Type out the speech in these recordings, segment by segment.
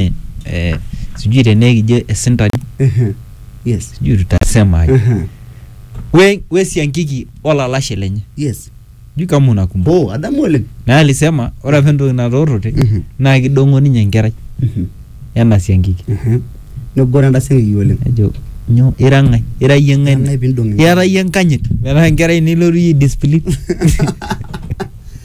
eh, eh, sijui tenaa ekijo esintani Ehe. Yes. sijui tutasema aje Ehe. we, we siankiki olalashe lenye Yes. sijui kama unakumbuka Oh, adamu oleng. na alisema ore apa entoki natoorote Mhm. naa kidong'o ninye enkerai Mhm. ena siankiki Ehe. Negoro entaseng'iki oleng. ejo nyo ira ng'ae ira yie ng'ae Nang'ai pindong' ira yie enkanyit metaa enkerai nilotu yie discipline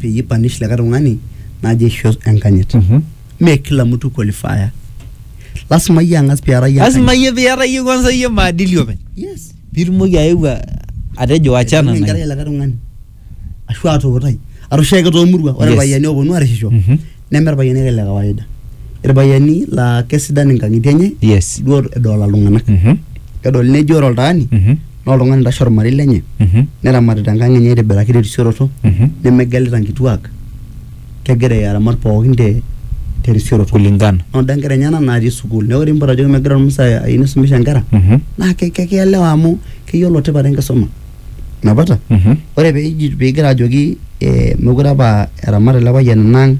peyie ipanish likae tung'ani naji aisho enkanyit Mhm. mee kila mtu qualifier lasima iyie ang'as piara iyie lasima enkanyit. iyie piata iyie kwanza iyie maadili openy yes piitumoki ayeu a- atejo wachana Aibung'ie na enkerai likae tung'ani ashu atuutai arashu ake toomurua ore Yes. irpayiani ooponu arishisho Mhm. neme irpayiani ake le kawaida irpayiani laa kesidan inkang'itie enye yes duo edolta iltung'anak Mhm, kedol neji ore oltaani mhm, naa oltung'ani oitashe ormarei lenye mhm, neramatita enkang enye aitibiraki terisioroto mhm. nemegelita nkituak kegira aramat pookin te terisioroto kulingana noda nkera enyena naatii sukuul neeku ore mpoto ajoki megira ormusa ayieu nisumisha nkera Mhm. naa ke- ke- kielewa amu keyiolo tipat enkisuma napata Mhm. ore peji pigira ajoki eh, mekure apa eramat ele payian enang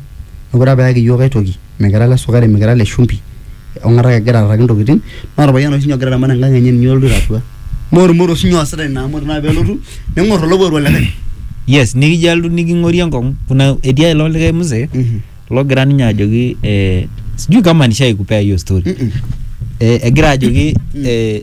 mekure apa eyaki iyiook aitoki mikira ile sukari mikira ile shumbi ong'ata ake egira arraki intokitin naa orpayian oshi ninye ogira aramat enkang enye ninye olotu atua naa ormoro oshi ninye oosita ina amu ore naa pelotu neng'or olowuaru olikae yes nikijo alotu niking'orie enkong'u kuna etii ae ilo likae mzee Mhm. logira ninye ajoki eh, sijui kama nishaikupea hiyo story Mhm. eh, egira ajoki eh,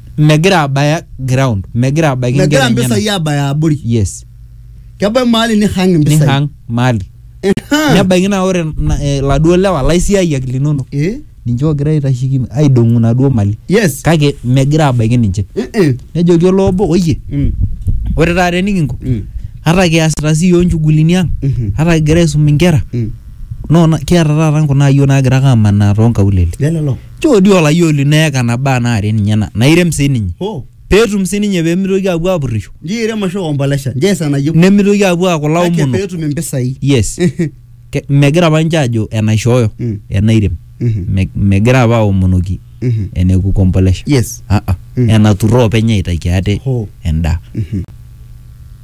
megira abaya ground megira abaiki megira inkera enyenak. mpisai abaya abori yes kebae maali nihang impisai nihang mali Ehaa. nebaiki naa ore na- eh, laduo lewa laisiayiak linonok Eh, ninche ogira aitashiki aidong'u naduo mali yes kake megira abaiki ninche Eh, eh. nejoki olo obo oyie Mm, ore taata enikinko mm, ata kiasita sii yioo nchugulini ang mhm, ata kigira aisum inkera mm. no na- kiata taata nkunaayio naagira ake amanaa toonkaulele lelelo Choo dii olayiok lino eeka nabaa naare enenyena, nairem sii ninye, Hoo, pee etum sii ninye pee meitoki aapuo aapurrisho, nchoo eirem ashu ekombolesha, nchoo ees enayieu. nemeitoki aapuo aaku Kake pee ilaomonok. etum impisai. Yes. Ke- Megira apa ninche aajo enaishooyo, Mm. enairem. Mhm. Me- Megira apa aomonoki Mhm. ene kukombolesha. Yes. Ah, ah. Mm. Enaturro openy aitaki ate Hoo. endaa. Mhm.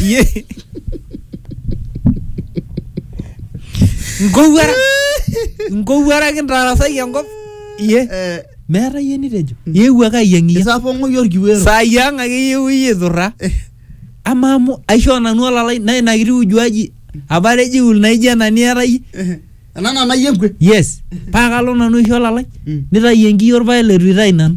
Ye. Ngowuara. Ngowuaraki ntarasaki enkop. Ye. Eh, Meeta yie nitejo. Yewuo ake ayieng'iyie. isapong'oyie orkiwero Saa yiang ake yewu iyie turra. Amaa amu aishoo nanu olalai naa ina kiti ujuaji apa atejiul naijo ena niata iyie. Eh, ena nanayie enkwe Yes. Paa kalo nanu aisho olalai. Mm. Nitayu enkiyio orpaek leitu itayu nanu.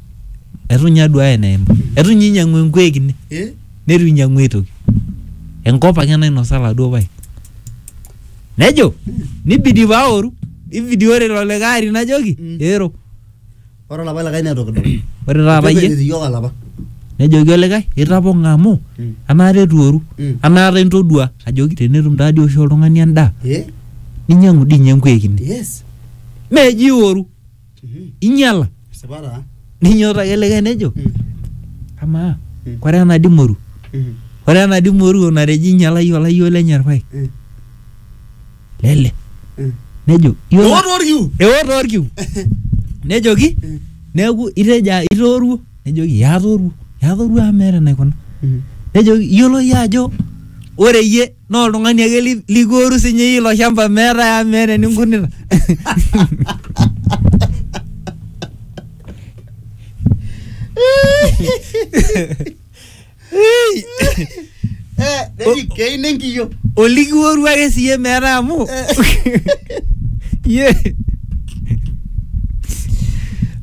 eitu ninye aduaya eneim eitu ninye inyiang'u enkuek ine Eh? neitu inyiang'u ae toki enkop ake nainosa laduo paek nejo nibidi paaoru ibidi ore ilo likae ari najoki Mm. eero Ore olapa likae naa toki doi. ore taata Kejo iyie enetii iyiok olapa. nejoki olikae itapong'a amu Mm. anaata etuoru Mm. anaata intodua ajoki tenetum taadi oshi oltung'ani endaa Eh? ninyiang'u dii ninye enkuek ine Yes. meji ioru Mhm. inyala Esipa taa. ninyototo ake likae nejo Mm. amaa Mm. kore ena di moru Mhm. ore ena di moru natejo inyalayie olayioo lenye irpaek Mm. lele Mm. nejo "Iyiolo- Eoto orkiu. eoto orkiu nejoki Mm. neeku itejo "Ah, itooruo nejoki "Ee, atooruo Ee, atooruo amu meeta enaikuna Mhm. nejoki iyiolo iyie ajo ore iyie naa oltung'ani ake li- likuoru sinye iyie ilo shamba meetae amu meeta eninkunita neji keino enkiyo olikiworu ake siye meeta amu ye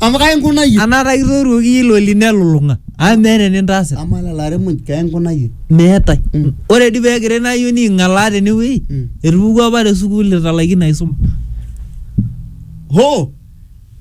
amu kainkunayie anaata kitoruoki iyie ilo lino elulung'a amu meeta enintaasita amaa lelo aremuj kainkunayie meetae Mm. ore dii peekira ina ayioni aing'alaa tenewueji Mm. etupukuo apa te sukuul italaikine aisuma hoo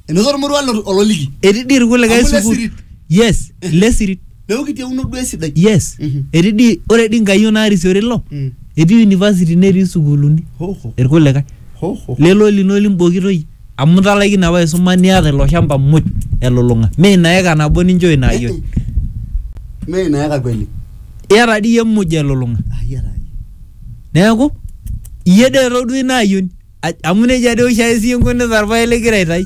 enoto ormoruo lo- ololiki etii dii irkulikae Amu sukuul lesirit. yes lesirit neeku kitieuno duo esidai yes Mhm. etii dii ore dii nkayiok naarisiore ilo Mm. etii university netii sukuuluni Ho, ho, irkulikae ho, ho. lelo lino limbokitoi amu italaikine apa aisuma niata ilo shamba muj elulung'a mee ina eka nabo ninchoo ina ayioni Mee ina eka kweli. iyata dii iyie muj elulung'a Ayiara. neeku iyie dee etodua ina ayioni Aj- amu nejia dee oshiake sii inkunita irpaek ligira aitai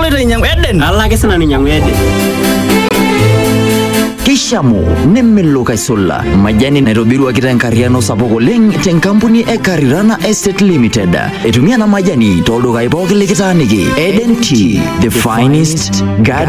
aloito ainyiang'u Eden. Kalo ake sinanu ainyiang'u Eden. Kishamu nemelok aisula majani naitobiruaki tenkarriano sapuk oleng tenkampuni e Karirana Estate Limited. Etumia ena majani toldukai pooki likitaaniki. Eden Tea, the finest garden